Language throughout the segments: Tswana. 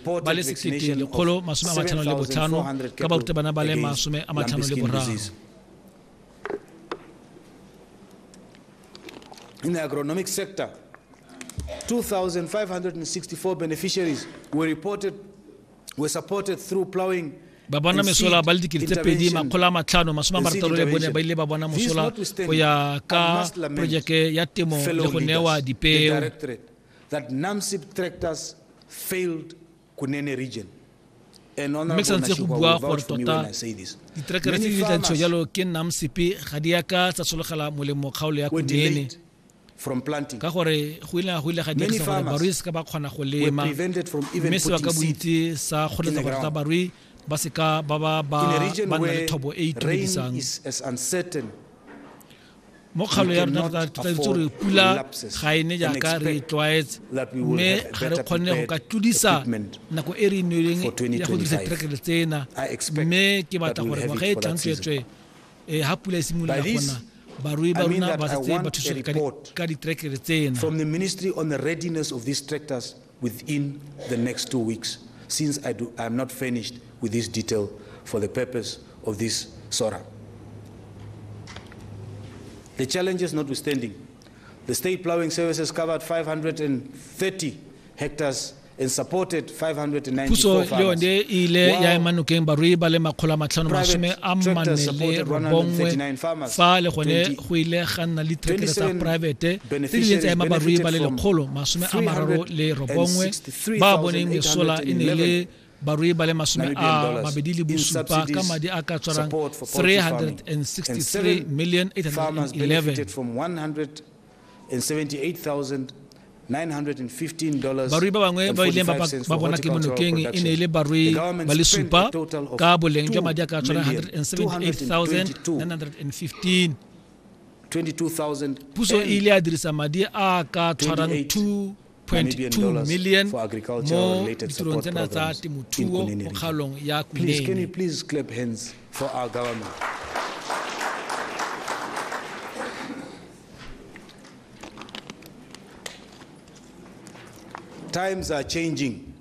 ba le 1,155 ka barutabana ba le masome a matlhano le boraro In the agronomic sector, 2,564 beneficiaries were reported were supported through plowing ba bona mesola ba le dikete tse pedi makgolo a matlhano masome a marataro le bone ba ile ba bona mosola go ya ka projeke ya temo le go newa dipeo that NAMSIP tractors failed Kunene region. mme sa ntse go bua gore tota diterekere tse di tla ntsho jalo ke nnang sepe ga di yaka tsa sologela molemo kgaolo ya kunene ka gore go ile go ile ga dirisa gore barui se ka ba kgona go lema mme se ba ka bontsi sa kgoletsa gore tsa barui ba se ka ba ba ba nna le thobo e itumedisang mo kgalo ya rona tota re tlwaetse gore pula ga e ne jaaka re e tlwaetse mme ga re kgone go ka tlodisa nako e re e neileng ya go dirisa diterekere tsena mme ke batla gore ngwaga e tlang tsweetswe eh, ha pula e simolola gona barui ba rona ba setse ba thusega ka diterekere tsena within the next two weeks since I, do, I am not furnished with this detail for the purpose of this SORA. The challenges notwithstanding, the state plowing services covered 530 hectares puso le yone e ile ya ema nokeng barui ba le makgolo a matlhano masome a mmane le robongwe fa le gone go ile ga nna le tsa poraefete tse di ile tsa ema barui ba le lekgolo masome a mararo le robongwe ba boneng mesola e ne le barui ba le masome a mabedi le bosupa ka madi a ka tswarang 363 million 811 barui ba bangwe ba ileng ba bona ke monokeng e ne e le barui ba le supa ka boleng jwa madi a ka tswana 178,915 Puso e ile ya dirisa madi a ka tshwarang 2.2 million mo ditirong tsena tsa temothuo mo kgaolong ya Kunene. Times are changing.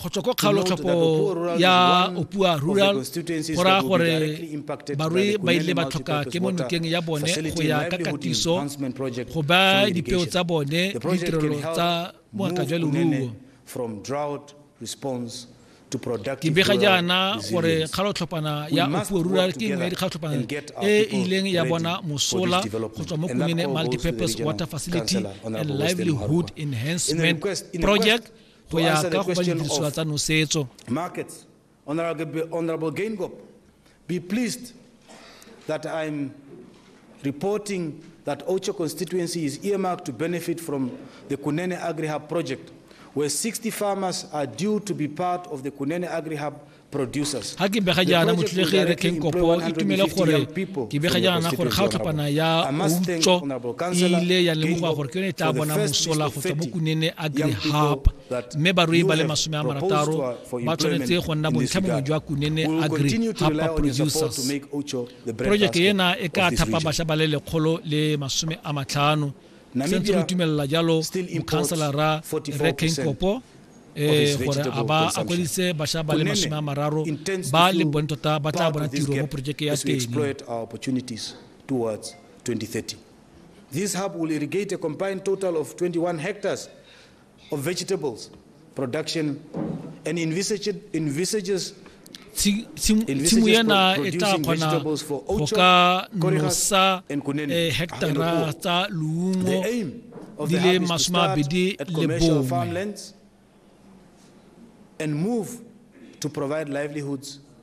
go tswa ko kgaolotlhoko ya opua rural go raya gore barui ba ile ba tlhoka ke mo nokeng ya bone go ya ka katiso go ba dipeo tsa bone ditirelo tsa moaka jwa leruo ke bega jaana gore kgalotlhopana ya opuo rural ke nngwe ya dikgalotlhopana e e ileng ya bona mosola go tswa mo kumene multipurpose water facility and livelihood enhancement project go ya ka go ba didirisiwa tsa nosetso markets honorable, honorable Gaingop, be pleased that i'm reporting that Ocho constituency is earmarked to benefit from the Kunene Agri-Hub project, where 60 farmers are due to be part of the Kunene Agri-Hub ga ke bega jaana motlholegi re tlheng kopo itumele gore ke bega jaana gore ga o tlhopana ya utso e ile ya lemogoa gore ke yone e tla bona mosola go tswa mo kunene a grihapa mme barui ba le masome a marataro ba tshwanetse go nna bontlhamongwe jwa kunene a grihapa producers projeke ena e ka thapa bašwa ba le lekgolo le masome a matlhano sentse re tumelela jalo mokhanselara reking kopo eh gore a ba a kwedise basha ba le masome a mararo ba le bone tota ba tla bona tiro mo porojeke ya teng This hub will irrigate a combined total of 21 hectares tshimo ena e tla kgona go ka nosa eh, hectara tsa leungo di le masome a bedi le bongwe